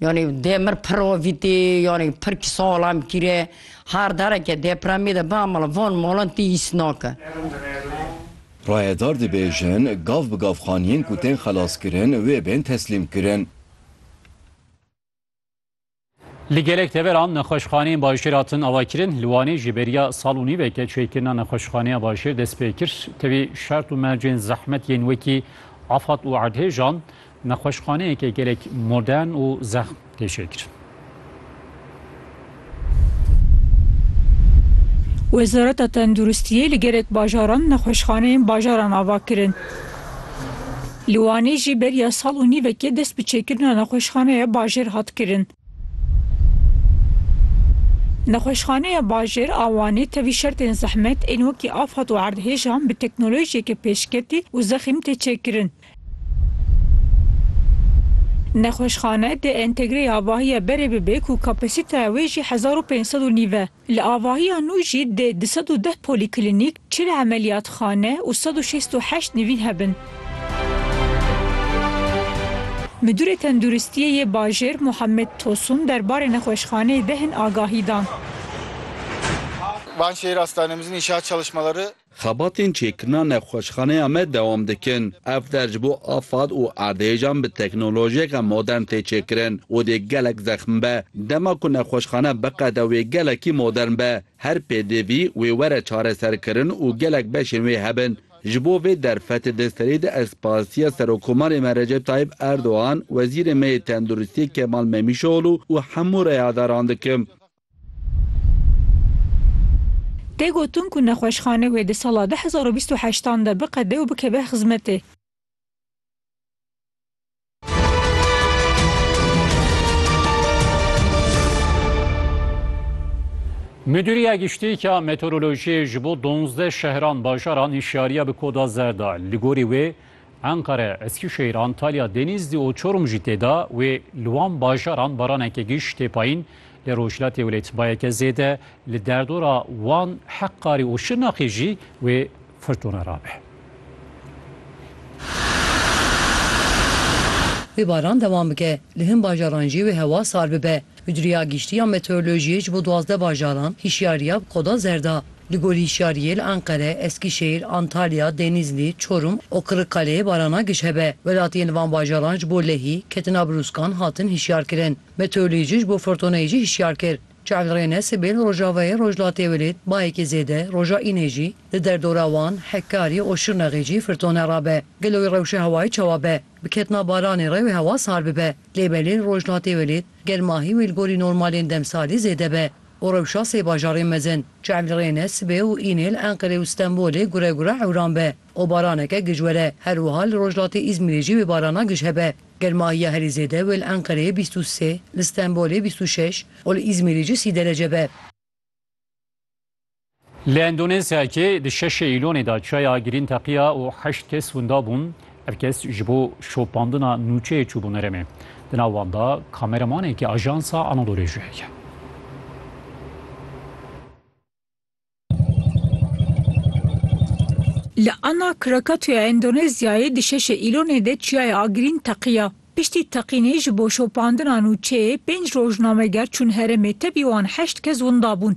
Yanî dê mir pir ovîtî, yanî pir kî salam kîre. Her dereke depremî de bia mala van malan tî hîs nake. Rayedar dibêjin, gav bi gav xaniyên ku tên xelaskirin wê bên teslîmkirin. Li gelek deveran nexweşxaneyên bajêr hatin avakirin. Li Wanê ji beriya sal û nîveke çêkirina nexweşxaneya bajêr dest pê kir. Tevî şert û mercên zehmet yên wekî afat û erdhêjan Nexweşxaneyeke gelek modern û zexm tê çêkirin. Wezareta Tenduristiyê li gelek bajaran nexweşxaneyên bajaran ava kirin. Li Wanê jî beriya sal û nîvekê dest bi çêkirina nexweşxaneya bajêr hat kirin. Nexweşxaneya bajêr a Wanê tevî şertên zehmet ên wekî afet û erdhêjan bi teknolojiyeke pêşketî û zexîm tê çêkirin. Nexweşxane dê entegre avahiya berê bibe ku kapasîteya wê jî hezar û pênc sed û nîv e. Li avahiya nû jî dê du sed û deh polîklînîk, çil emeliyatxane û sed û şêst û heşt nivîn hebin. Midûrê Tenduristiyê yê bajêr Muhammed Tosun der barê nexweşxaneyê de hin agahî dan. Xebatên çêkirina nexweşxaneya me dewam dikin. Ev der ji bo afad û erdhêjan bi teknolojiyeke modern tê çêkirin û dê gelek zexm be. Dema ku nexweşxane biqede wê gelekî modern be, her pêdivî wê were çareserkirin û gelek beşên wê hebin. Ji bo vê derfetê di serê de ez spastiya Serokomarê me Recep Tayîp Erdogan, Wezîrê me yê Tenduristiyê Kemal Memîşoglû û hemû reyadaran dikim. Tê gotin ku nexweşxane wê di sala du hezar û bîst û heşt an de biqede û bikeve xizmetê. Midûriya Giştî ya Meteorolojiyê ji bo donzdeh şehran bajaran hişyariya bi koda zer da. Li gorî wê, Enqere, Eskîşehîr, Antalya, Denîzlî û Çorum jî tê de wê li wan bajaran baraneke giş tê payîn. Li rojhilatê wê tbayeke zêde, li derdora Wan, Heqqarî û Şirnexê jî wê firtûne rabe. Wê baran dewam bike, li hin bajaran jî wê hewa sar bibe. Mudîriya Giştî ya Meteorolojiyê ji bo duwazdeh bajaran hişyariya bi koda zer da. Li gor hişyariyê li Enqere, Eskîşehîr, Antalya, Denîzlî, Çorum û Qirikkaleyê barana giş hebe. Welatiyên li van bajaran ji bo lehî ketina brûskan hatin hişyarkirin. Meteorolojî ji bo furtoneyê jî hişyar kir. Çavlrêne sibê li rojavayê Rojhilatê welêt bayekî zêde, roja înê jî li derdora Wan, Hekarî û Şirnexê jî furtone rabe. Gelo wê rewşa hewayê çawa be? Bi ketina baranê re wê hewa sar bibe. Lê belê rojnatê welêt gel mahî wê li gorî normalên demsalî zêde be û rewşa sê bajarên mezin Çelrêne, Sibê û Înêl, Enqerê û Stenbolê gure gure hewran be û baraneke gij were. Her wiha li rojlatê Îzmîrê jî wê barana gij hebe. Gel mahiya herî zêde wê li Enqerê bîst û sê, li Stenbolê bîst û şeş û li Îzmîrê jî sî derece be. Li Endonezyayê di şeşê Îlonê de çaya girîn teqiya û heşt kes winda bûn. Ev kes ji bo şopandina nûçeyê çûbûn herêmê. Di nav wan de kameramanekî ajansa Anadoluyê jî heye. Li Ana Krakatoya Endonezyayê di şeşê Îlonê de çiyaya girîn teqiya. Piştî teqînê ji bo şopandina nûçeyê pênc rojnameger çûn herêmê tevî wan heşt kes winda bûn.